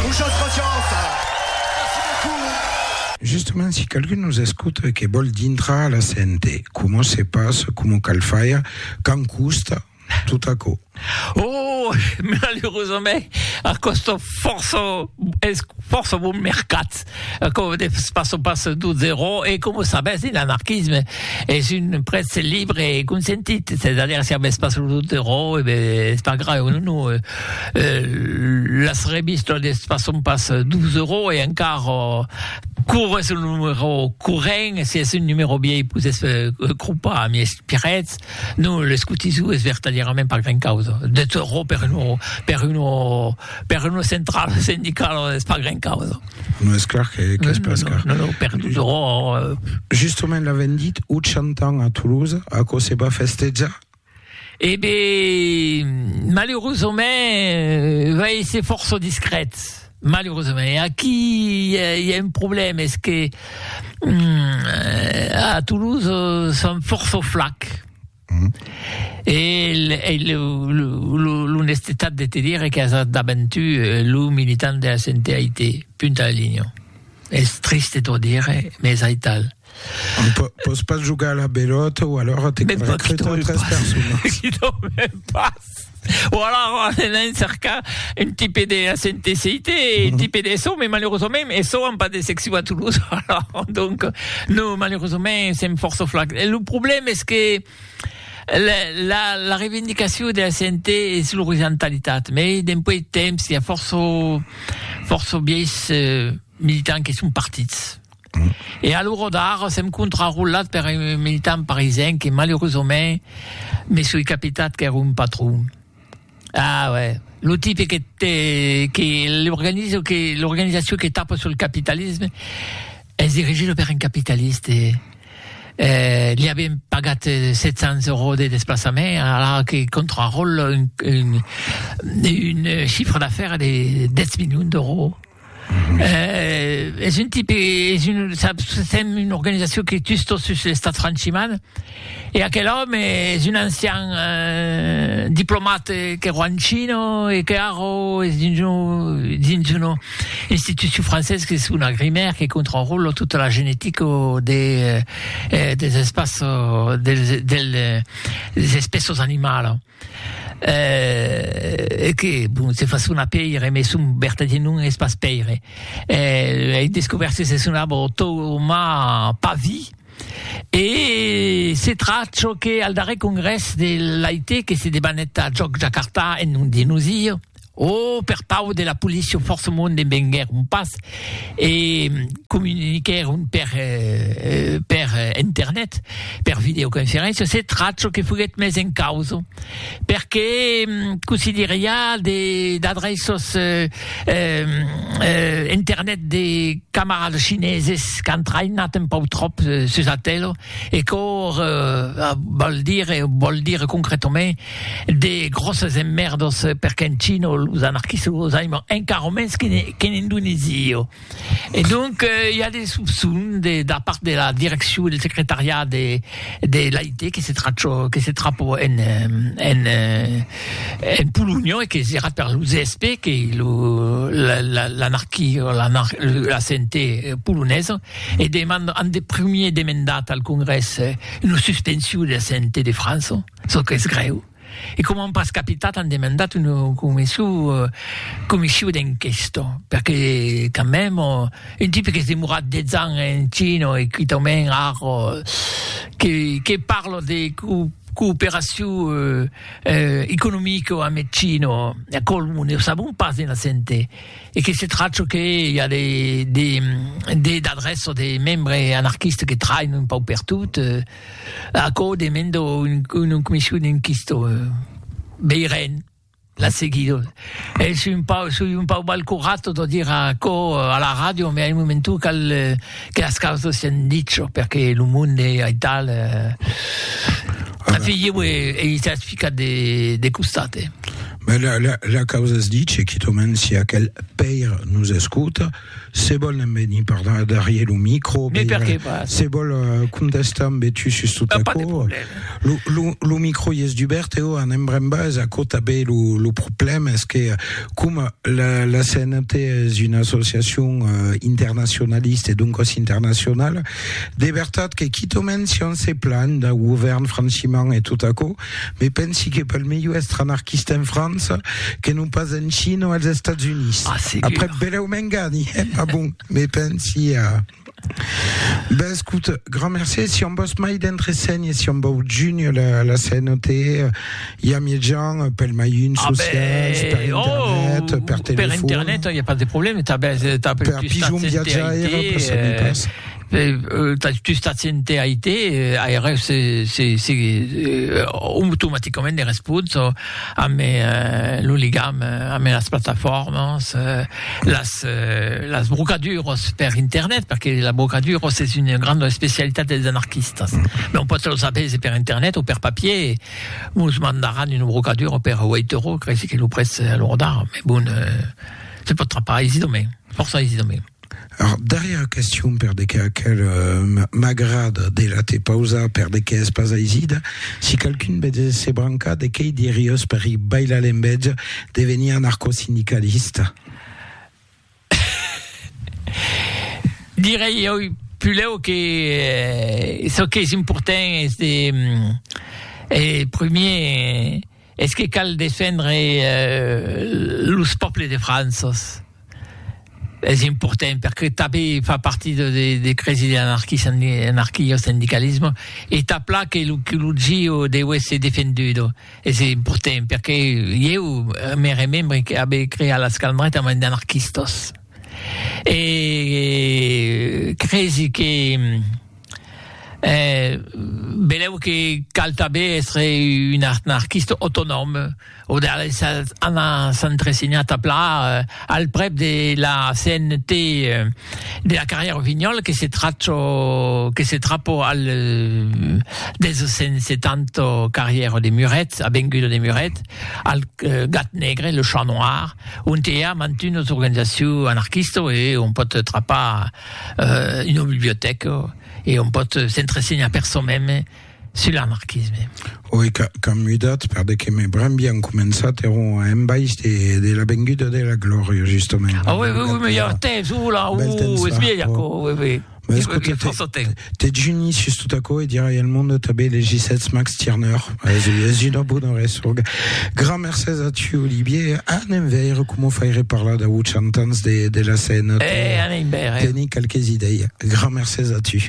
Ushos Rochos! Justement si qualqu'un nos escota e que vòl dintrar a la CNT, coma se passa, coma cal faire, quand costa, tot aquò? Oh! Malerosament, a còsta fòrça, es fòrça bon mercat. Aquò de pas o pas d'o zero e com o sabes de l'anarquisme es un prètz libre e consentit se da dire si a vès pas lo do zero e be es pas grave o non o las revistas de pas son pas d'o zero e encara cor es un numero corrent e si es un numero viei pus es cropa a mi es pirètz non l'escotisou es vertadièrament pas gran causa de zero per un per un Per una centrala sindicala es pas gran causa. Non es clar que que es pas car. Non, non, per tothom. Justement l'avèm dit 80 ans a Toulouse, aquò se va festejar? E ben, malaureusament va èsser fòrça discret, malaureusament. E aquí i a un problèma, es que a Toulouse son fòrça flacs. Mm. E, e l'onestetat de te dire que as davant tu eh, lo militant de la CNTIT, punt a la linha. Es triste t'ho dire, mais es aital. On peut, peut pas jugar à la belote ou alors t'es recruté tres personnes. Qui t'en passe O alara anain cercar un tipe de SNTCIT, un tipe de SO, mais malerosament SO an pas de seccion a Toulouse, alara donc non, malerosament sèm fòrça flacs. E lo problèm es que la la la reivindicacion de la CNT es l'orizontalitat, mais dempuèi temps i a fòrça fòrça vièis militants que son partits. E a l'ora d'ara sèm contrarolat per un militant parisenc que malerosament me soi capitat qu'ère un patron. Ah uè, lo tipe que te que l'organizo que l'organizacion que tapa sul capitalisme es dirigida per un capitaliste. Eh li avien pagat 700 euros de desplaçament ara que contraròla un un un chiffre d'affaires de 10 milions d'euros. Eh, es un tipe, es un, sèm una organizacion que tustos sus l'estat franchiman, e aquel òme es un ancian eh, diplomat qu'èro en China e que ara es dins un, dins una institucion francés qu'es una grimèr que contròla tota la genetica de, eh, des espaços, dels, dels espèces animalas. Eh, e que, bon, se fa sonar pèire, mès son vertadier nom es pas Pèire. Eh, ei descobèrt que se sonava Tomà Pavi, e se trach çò que al darrèr congrès de l'AIT que se debanèt a Jòc Jakarta en nom de nosir, O per pau de la policia fòrçamont venguèron pas e comuniquèron per per internet, per videoconferéncia, se tracho que foguèt mes en causa, perque cossí dire i a de d'adreços internet de camarades chineses qu'an traïnat un pauc tròp sus Atelo E quò val dire, o vòl dire concretament, de gròsses emmèrdas per qu'en China los anarquistas los aiman encara mens qu'en Indonèsia. E donc i a de sopçons de da part de la direccion del secretariat de de l'AIT que se trachò que se trapò en en en Polonha e que serà per lo ZSP que lo l'anarquia la CNT polonesa E deman an de primier demendat al Congrès una suspension de la CNT de França, çò qu'es grèu, e coma an pas capitat an demandat una comission d'enquesta, perque quand meme un tipe qu'es demorat 10 ans en China e quitament ara que parla de cooperacion economica amb eth China, aquò non o sabon pas dins la CNT. e que se tracho que i a de de de d'adrèço de membre anarquiste que traïn un pauc per tot eh, aquò demendo un una comission inquisto veirem la seguido e soi un pauc soi un pauc mal currato de dire aquò a la ràdio me a un momento cal que las causas sian dicho perque lo monde aital eh a figir e e i s'as ficat de de costat eh. Ben, la, la, la causa es ditge, quitament si aquel pèir nos escota, se vol ne'n venir parlar darrier lo micro, Mais per que pas? se vol euh, contestar ambe tu sus tot Ah, pas de aquò, problème. lo, lo, lo micro i es dubèrt e o anem brèn bas, aquò tanben lo, lo problème es que coma la, la CNT es una associacion euh, internacionalista e doncas internacionala, de vertat que quitament si on se planh dau govèrn franchiment e tot aquò, Me pensi que pel melhor èstre anarquista en França que non pas en China o als Estats Units. Ah, segur. Après, belèu m'engani, eh? Ma bon, me pensi a... Ben, escoute, grand mercé. Si on vòs mai d'entresenhas, si on vòu junhre la, la CNOT, i a mièjan pel mailhin Ah, social, per ben, oh, internet, per per telefòn. internet, il n'y a pas de problème. T'as, ben, t'as per Per plus pijon t'as viatjaire, per saber pas. eh, Tu stats ente IT, aireu se automaticament de respons amb lo ligam amb las plataformas, las brocaduras per internet, perque las brocaduras es una granda especialitat dels anarquistas. Non pòt los avèse per internet o per papier, mos mandaràn una brocadura per Waytoro, creisi que lo prètz a lo rodar, me bon, se pòt trapar aisidament, fòrça aisidament. Ath darrièr question per de qué aquel m'agrad de la te pausa per de qué es pas aisida si qualqu'un ve de se brancar de quei diriós per i bailar l'envètja de venir anarcosindicalista. Direi oi pulèu que çò qu'es important es de primier Es que cal defendre los pòbles de Franças. Es important perque tanben fa partit de cresi de l'anarquio-sindicalisme e tà plan que lo QLG deu èsser defendut. Es important perque ieu me remembre que abe creat las calmretas amb d'anarquistas e cresi que Eh, benlèu que cal tanben èstre un anarquista autonòm, o de anar s'entresenhar tà plan al prèp de la CNT de la carrièra Rossignol que se trachò, que se trapò al 270 carrièra de Muret, avenguda de Muret, al Gat Negre, le Chat Noir, ont i a mantunas organizacions anarquistas e on pòt trapar. euh, una bibliotèca e on pòt s'entresenhar per çò meme sul anarquisme. Oi, qu'an mudat, per de que me bram bien començat, eron a embaish de, de la venguda de la glòria, justament. Ah oui, oui, oui, me hi ha temps, oula, uh, es vieja, oui, oui. Mas, Dejuni sus tot aquò e dirai al monde tanben de Gisètz Max Tirneur. Es, es una bona resonga. Gran mercés a tu, Olivier. Anem veire com o faire parlar dau 80 ans de, de la scène. Eh, anem veire. Teni qualques idei. Gran mercés a tu.